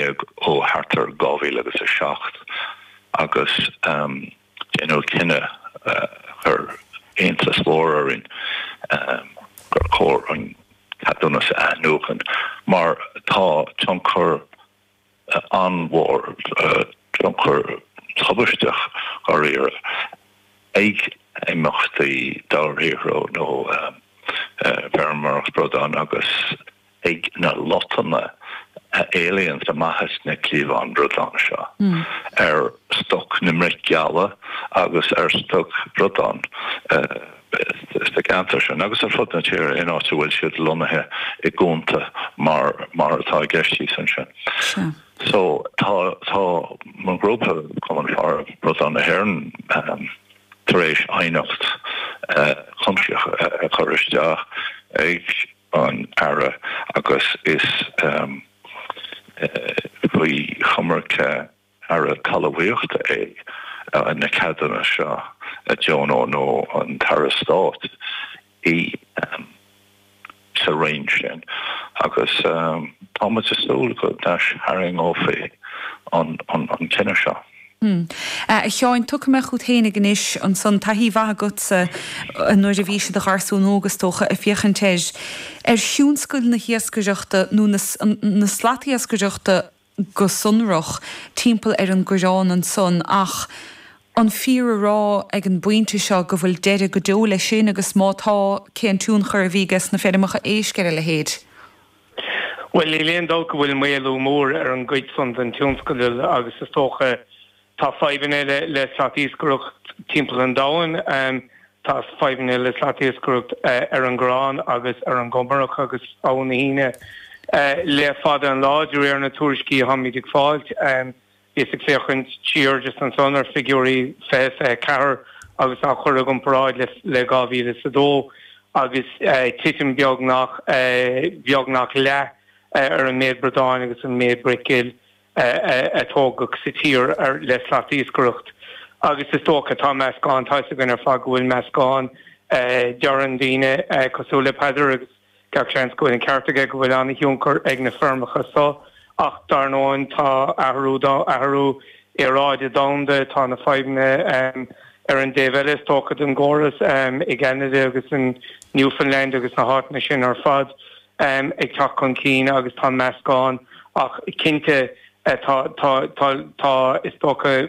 beag ó thart ar 2000 agus 7, agus déanadh cinneadh a chuir iontas mhór orainn gur chóir an ceadúnas a athnuachan mar tá tionchar an-mhór, tionchar tubaisteach dháiríre, ag imeachtaí dobharshaothrú nó feirmeoireacht bradán agus. ag na lotanna a éalaíonns amach as na cliabháin bradán seo, ar stoc na mbreac geala agus ar stoc bradán sa gceantar sin agus ar fud na tíre in áit a bhfuil siad lonnaithe i gcuanta mar atá i gceist thíos ansin. So, tá mo ghrúpa, Cumann Faire Bradán na hÉireann, tar éis aighneacht chuimsitheach a chur isteach ag. an Aire agus is faoi choimirce Aire Talmhaíochta é na ceadanna seo a deonú nó an tAire Stáit í sa roinn sin agus tá muid ag súil go n-aistharraingeofaí an cinneadh seo. Hm. A Sheáin, tiocfaidh mé chút fhéinig anois, ansan, taithí mhaith agatsa, nuair a bhís i do gharsún óg, is dócha, ag féachaint ar, ar thionscal na hiascaireachta, nó na, na slatiascaireachta go sonrach, timpeall ar an gCoireán ansan, ach an fíor a rá, ag an bpointe seo, go bhfuil deireadh go deo leis sin, agus má tá, cén tionchar a bhí aiges na feirmeacha éisc ar a leithéid? Bhuel, níl aon dabht go bhfuil maolú mór ar an gcuid san den tionscadal agus is dócha tá fadhbanna le slatiascaireacht timpeall an domhain. Tá fadhbanna le slatiascaireacht ar an gCorrán agus ar an gComarach agus Abha na hUíne le fada an lá, de réir na tuairiscí a tháimid ag fáilt. Bhíos ag féachaint siar just ansan ar figiúirí 2024 agus á chur i gcomparáid le 2002 agus titim beagnach beagnach leath ar an méid bradán agus an méid bric ghil a tógadh sa tír le slatiascaireacht agus is dócha tá meascán tá fhios againn ar fad go bhfuil meascán deireann daoine cosúil le Peadar agus Gach seans go bhfuil an ceart aige go bhfuil an-thionchar ag na feirmeacha seo, ach dar ndóin tá athrú dá athrú aeráide domhanda, tá na fadhbanna ar an dtaobh eile is dócha den gcóras, i gCeanada agus in Newfoundland agus na háiteanna sin ar fad, ag teacht chun cinn agus tá meascán ach cinnte. Tá, tá, tá, tá, is dócha,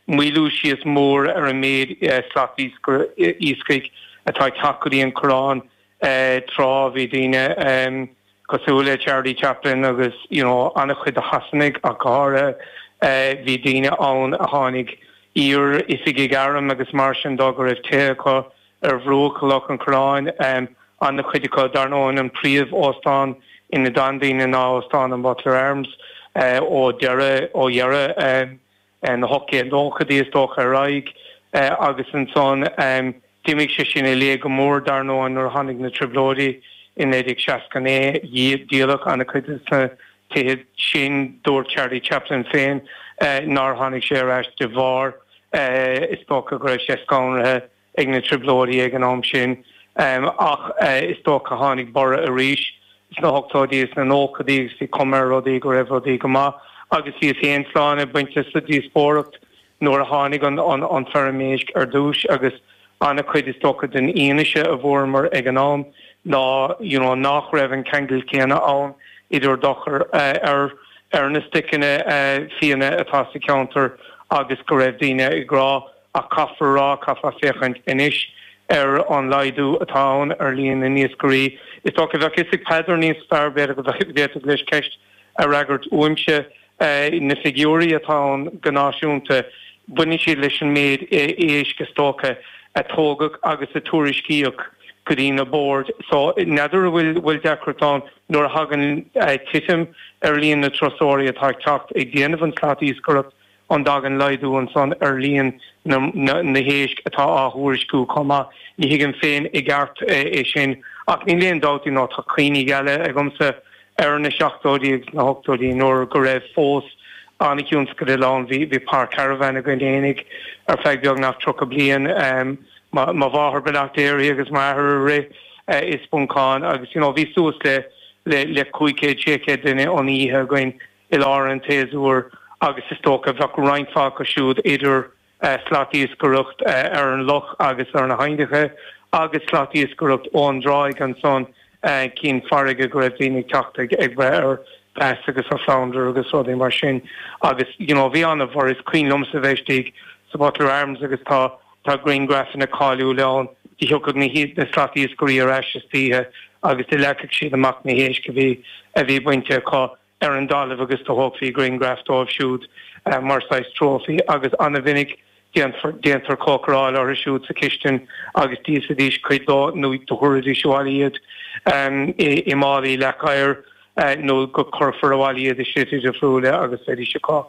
maolú síos mór ar an méid slat iascaigh atá ag teacht go dtí an Coireán. Tráth, bhí daoine cosúil le Charlie Chaplin agus you know an-chuid de Shasanaigh ach go háirithe, bhí daoine ann a tháinig, iar-oifigigh airm agus mar sin de, go raibh tithe acu, ar bhruach Loch an Choireáin, an-chuid acu, dar ndóigh, an príomh-óstán ina d'fhan daoine ná Óstán an Butler Arms ó deireadh, ó dheireadh na hocht-gcéad nóchaidí, is dócha, ar aghaidh. Agus ansan, d'imigh sé sin i léig go mór, dar ndóigh, nuair a tháinig na Trioblóidí i 1969. Díoladh an-chuid de na tithe sin. Dúirt Charlie Chaplin féin nár tháinig sé ar ais de bharr, is dócha, go raibh sé scanraithe. ag na Trioblóidí ag an am sin, ach is dócha gur tháinig borradh arís sna hochtóidí is na nóchaidí agus bhí cuma ar rudaí go raibh rudaí go maith agus bhíos fhéin sláine bainte sa díospóireacht nuair a tháinig an fheirm éisc ar dtús agus an-chuid is dócha den fhianaise a bhfuaireamar ag an am ná you know nach raibh an ceangal céanna ann idir dochar ar ar na stoiceanna fiáine atá sa cheantar agus go raibh daoine ag rá Ach caithfear a rá, caithfeá féachaint anois ar an laghdú atá ann ar líon na n-iascairí. Is dócha, bheadh 'fhios ag Peadar níos fearr, b'fhéidir go bhféadfadh leis ceist a fhreagairt uaimse. Na figiúirí atá ann go náisiúnta, baineann siad leis an méid éisc, is dócha, a tógadh agus a tuairiscíodh go dtí na boird. So, n'fheadar an bhfuil deacracht ann nuair a thagann titim ar líon na dturasóirí atá ag teacht ag déanamh an tslat iascaireacht. An dtagann laghdú ansan ar líon na héisc atá á thuairisciú chomh maith? Ní thuigim féin i gceart é sin, ach níl aon dabht, you know, tá cuimhní geala agamsa ar na seachtóidí agus na hochtóidí nuair go raibh fós an-thionscadal ann. Bhí Páirc Caravan againn fhéinig ar feadh beagnach tríocha bliain. Mo mháthair beannacht Dé uirthi agus m'athair a rith i Spuncán agus you know bhí suas le cúig chéad, sé chéad duine an oíche againn. i lár an tséasúir agus is dócha bheadh roinnt mhaith acu siúd idir slat iascaireacht ar an loch agus ar na haibhneacha agus slat iascaireacht ón dtráigh ansan cinn farraige go raibh daoine ag teacht ag breith ar bass agus ar flounder agus rudaí mar sin agus you know bhí ana mar is cuimhin liomsa bheith istigh sa Butler Arms agus tá tá grianghraifeanna cáiliúil ann do thiocfadh na na slat iascairí ar ais istoíche agus do leagfadh siad amach na héisc a bhí a bhí bainte acu ar an dtalamh agus do thógfaí grianghraif dóibh siúd mar saghas trófaí agus ana mhinic déanfar, déantar cócaireáil orthu siúd sa chistin agus d'íosfaidís cuid de nó do thabharfaidís abhaile iad i málaí leac oighir nó go gcuirfí abhaile iad i slite difriúla agus bheidís acu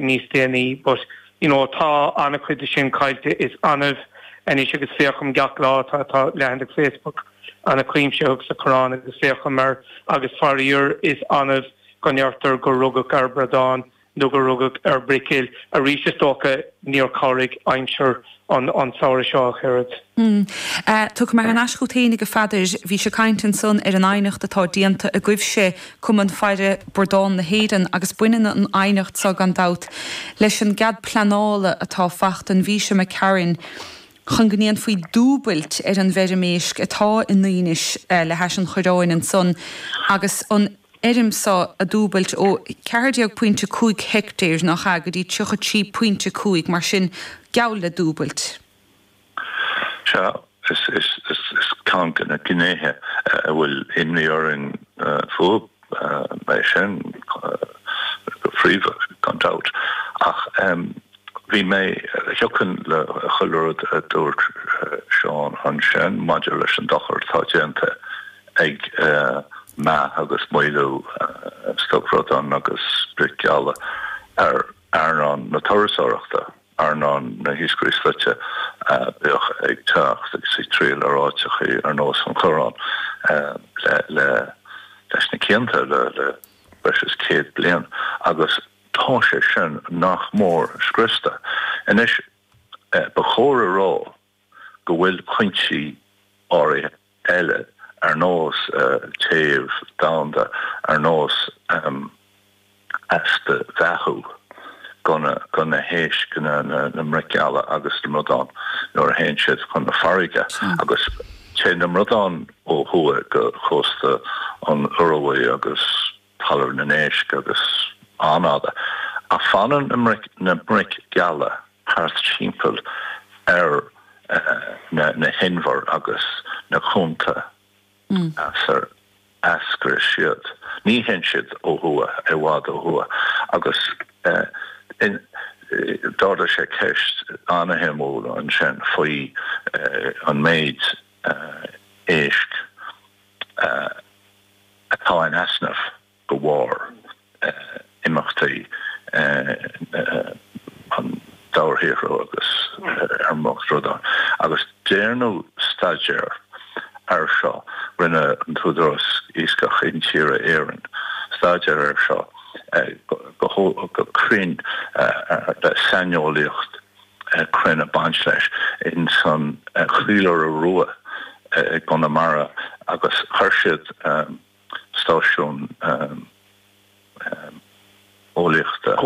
níos déanaí. But, you know, tá an-chuid de sin caillte, is annamh anois agus féachaim gach lá, tá, tá leathanach Facebook. Anglers, comh maith, sa Choireán agus féachaim air agus faraor is annamh go ndeirtear gur rugadh ar bhradán nó gur rugadh ar bhreac geal. Arís is dócha níor cabhraigh aimsir an tsamhraidh seo ach oiread. Tiocfaidh mé thar n-ais chughat fhéinig a Pheadair. Bhíos ag caint ansan ar an aighneacht atá déanta agaibhse, Cumann Faire Bradán na hÉireann, agus baineann an aighneacht so, gan dabht, leis an gcead pleanála atá faighte ag MOWI sa Choireán, chun go ndéanfaí dúbailt ar an bhfeirm éisc atá i nDuínis le hais an Choireáin ansan agus an fheirm so a dhúbailt ó cheathar déag pointe cúig heictéir, nách ea, go dtí tríocha trí pointe cúig, mar sin, geall le dúbailt. Sea, is ceann de na gnéithe a bhfuil imní orainn fúthu. Ba é sin go príomha, gan dabht, ach bheadh mé, thiocfainn le chuile rud a dúirt Seán ansin maidir leis an dochar atá déanta ag meath agus maolú stoc bradán agus bric gheala ar earnáil na turasóireachta. Earnáil na n-iascairí slaite a bheadh ag teacht agus ag triall ar áiteachaí ar nós an Choireáin leis na cianta, le breis is céad bliain, agus tá sé sin nach mór scriosta anois. Ba chóir a rá. go bhfuil cuinsí áirithe eile, ar nós téamh domhanda, ar nós easpa beathú do na héisc, na mbric gheala agus na mbradán nuair a théann siad chun na farraige, agus téann na bradáin ó thuaidh go cósta na hIorua agus. Talamh an Éisc agus Cheanada, ach fanann na bric gheala thart timpeall ar na hinbhir agus na cuanta as ar eascair siad. Ní théann siad ó thuaidh, i bhfad ó thuaidh, agus d'ardaigh sé ceist an-shuimiúil ansin faoi an méid éisc, atá in easnamh go bharr imeachtaí an dobharshaothrú agus ar mhórchuid rudaí, agus déanadh staidéar air seo, rinne an tÚdarás Iascach Intíre Éireann staidéar air seo go cruinn le saineolaíocht. cruinn ag baint leis ins an Chaoláire Rua i gConamara agus chuir siad stáisiún eolaíochta,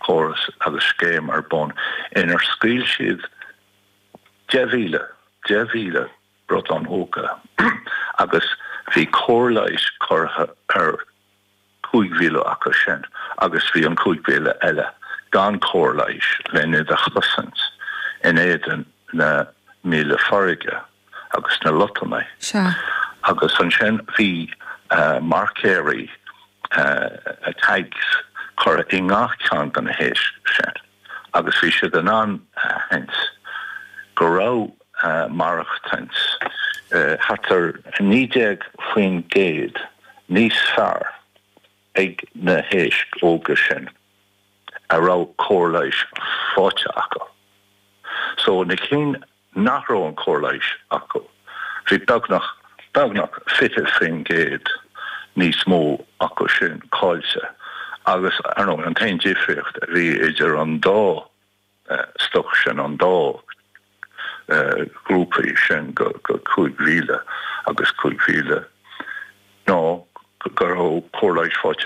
córas agus scéim ar bun inar scaoil siad deich míle, deich míle! bradán óga agus bhí cóir leighis curtha ar. Cúig mhíle acu sin agus bhí an cúig mhíle eile gan cóir leighis len iad a chosaint in éadan na míola farraige agus na lotnaidí agus ansin bhí marcaeirí Tags curtha i ngach ceann de na héisc sin agus bhí siad in ann a aithint go raibh maireachtaint thart ar 19% níos fearr ag na héisc óga sin a raibh cóir leighis faighte acu. So, na cinn nach raibh an chóir leighis acu, bhí beagnach, beagnach 20% níos mó acu sin cáillte agus, ar ndóigh, an t-aon difríocht a bhí idir an dá, stoc sin an dá ghrúpa sin de 5,000 agus 5,000 ná go raibh cóir leighis faighte.